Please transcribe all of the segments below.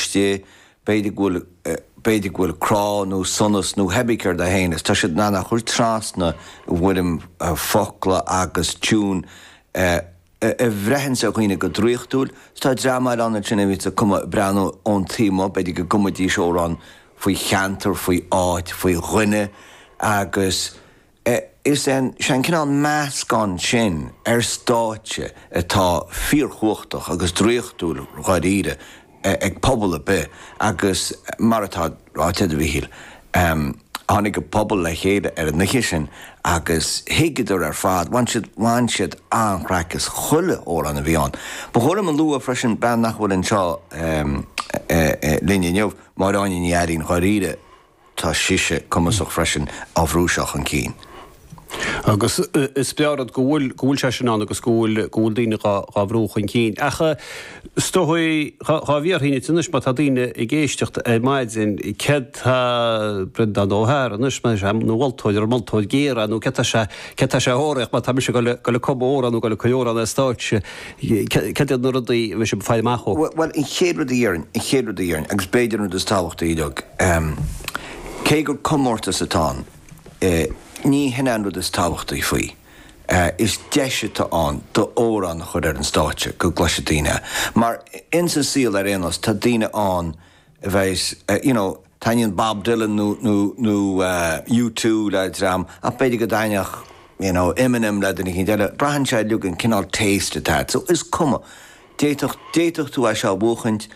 Sea, b'fhéidir go bhfuil, b'fhéidir go bhfuil crá nó sonas nó hé bí céard é féin is tá siad in ann a chur trasna i bhfoirm focla agus tiún a bhreitheanns ar dhaoine go draochtúil is tá dream eile ann ansin a bhíonns a' cumadh ag breathnú ón taobh amuigh, b'fhéidir go gcumadís amhrán faoi cheantar, faoi áit, faoi dhuine agus. é. Is é an seanchineál meascán sin ar stáitse atá fíorchumhachtach agus draíochtúil dháiríre ag pobal ar bith agus mar atá ráite a'd a Mhichíl, tháinig an pobal le chéile ar an oíche sin agus thuigeadar ar fad, bhain siad, bhain siad an-chraic as chuile amhrán a bhí ann. Ba chóir dom a lua freisin bean nach bhfuil anseo linn inniu, Máire Áine Ní Iarnáin, dháiríre, Tá sise cumasach freisin á bhrú seo chun cinn. Agus is breá rud go bhfuil, go bhfuil sé sin ann agus go bhfuil, go bhfuil daoine dhá, dhá bhrú chun cinn. Ach is dóigh, dhá, dhá dtabharfainn dhuit anois má tá daoine ag éisteacht ar maidin, céard tá Breandán Ó hEaghra anois, má tá sé ina mholtóir ar an moltóir géar, nó cad tá sé, cad tá sé a thabharfaidh má tá mise goil ag, goil ag cumadh amhrán nó goil ag cur amhrán ar an stáitse. Cad iad na rudaí a mbíonn sibh ag faire amach dó? Bhuel, an chéad rud a dhéarfainn, an chéad rud a dhéarfainn, agus b'fhéidir an rud is tábhachtaí uilig, cé gur comórtas atá ann, ní hin é an rud is tábhachtaí faoi. Is deis atá ann d'amhrán a chur ar an stáitse, go gcloisfidh daoine é. Mar, in sa saol ar aon nós, tá daoine ann a bheidh, you know, Taitníonn Bob Dylan nó U2 le dream ach b'fhéidir go dtaitneodh you know Eminem le duine éicint eile. Braitheann sé uilig cén cineál taste atá a't. So is cuma. D'fhéadfadh, d'fhéadfadh tú é seo a bhuachaint,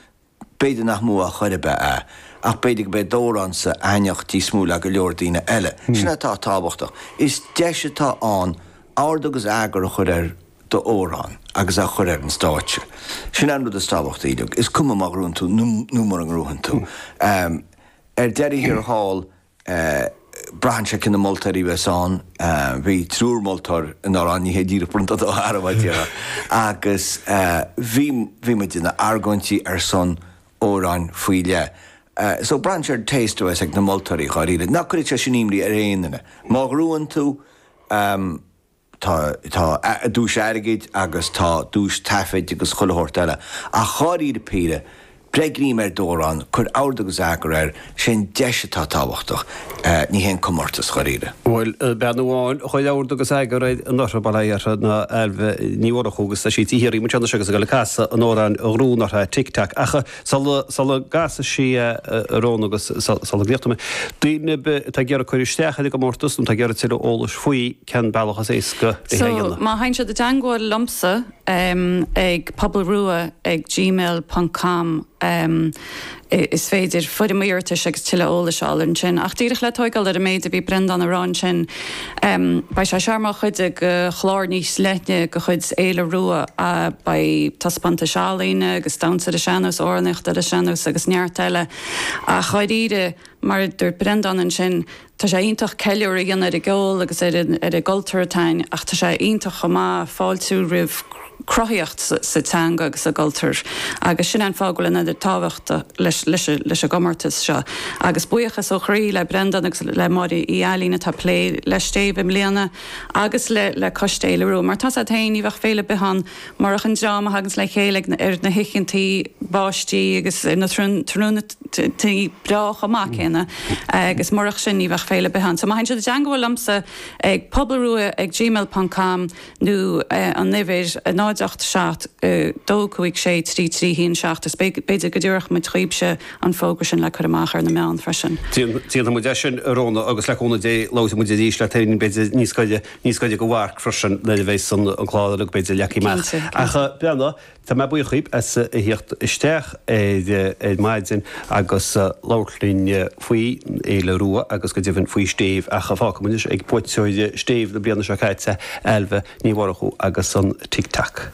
b'fhéidir nach mó á chur a b'ea é. Ach b'fhéidir go beidh d'amhránsa ag taitneachtáil níos mó le go leor daoine eile. Sin é atá tábhachtach. Is deis atá ann ord agus eagar a chur ar d'amhrán agus a chur ar an stáitse. Sin an rud is tábhachtaí uilig. Is cuma má ghnóthaíonn tú nó mura ngnóthaíonn tú. Ar deireadh thiar thall braitheann sé cé na moltóirí bheas ann. Bhí triúr moltóir i nGaoth Dobhair an oíche bronnta dó thar a bhaint de. Agus bhí bhí muidne ag argóint ar son amhráin faoi leith. So braitheann sé ar an taste a bheas ag na moltóirí dháiríre. Ná cuireadh sé sin imní ar aon duine. Má ghnóthaíonn tú. Tá, tá duais airgid agus tá duais taifid agus chuile shórt eile. Ach dháiríre píre, beir greim ar d'amhrán, cuir ord agus eagar air, sé an deis atá tábhachtach, ní hé an comórtas, dháiríre. Bhuel bean amháin a chuir ord agus eagar ar an Ortha, babhla siar ná Ailbhe Ní Mhurchú agus tá sí i dtigh linn anois agus ag goil ag casadh an amhráin dhúinn ar ball, Tic Tac. Ach sula gcasfaidh sí an t-amhrán agus sula gcríochnóidh muid, daoine atá ag iarraidh cur isteach ar an gcomórtas nó atá ag iarraidh tuilleadh eolais faoi, cén bealach is éasca é a dhéanamh? So, má théann siad i dteangmháil liomsa ag pobalrua ag gmail ponc com is féidir foirm iarratais agus tuilleadh eolais a fháil ansin. Ach díreach le tóigeáil ar an méid a bhí Breandán ag rá ansin, beidh sé seo mar chuid de chlár níos leithne de chuid Fhéile Rua. Beidh taispeántais ealaíne agus damhsa ar an sean-nós, amhránaíocht ar an sean-nós agus neart eile. Ach dháiríre, mar a dúirt Breandán ansin, Tá sé iontach ceiliúradh a dhéanamh ar an gceol agus ar an gcultúr atá ann ach tá sé iontach chomh maith fáiltiú roimh cruthaíocht sa teanga agus sa gcultúr agus sin é an fáth go bhfuil an oiread tábhachta leis an gcomórtas seo. Agus buíochas ó chroí le Breandán agus le Máire Uí Ailín atá ag plé le Stéibh i mbliana agus le Coiste Fhéile Rua. Mar atá a fhios agat féin, ní bheadh féile ar bith ann Murach an dream a thaganns le chéile ar na hoícheantaí báistí agus ar na tráthnóntaí breá chomh maith céanna, agus murach sin ní bheadh féile ar bith ann. So má théann siad i dteangabháil liomsa ag pobalrua ag gmail ponc com nó an uimhir, 0 8 7 2 5 6 3 3 1 7, is b'fhéidir go dtabharfadh muid dhaoibhse an fógra sin le cur amach ar na meáin freisin. Déanfaidh muid é sin, a Rhóna, agus le cúnamh Dé labhróidh muid arís leat féin b'fhéidir níos gaire. Níos gaire don mharc freisin nuair a bheidh an clár uilig b'fhéidir leagtha amach. Cinnte, cinnte. Ach Breanna, tá mé buíoch dhaoibh as a theacht isteach ar maidin agus labhairt linn faoi Fhéile Rua agus go deimhin faoi Stéibh ach fágfaidh muid anois ag buaiteoir Stéibh na bliana seo caite, Ailbhe Ní Mhurchú agus an Tic Tac.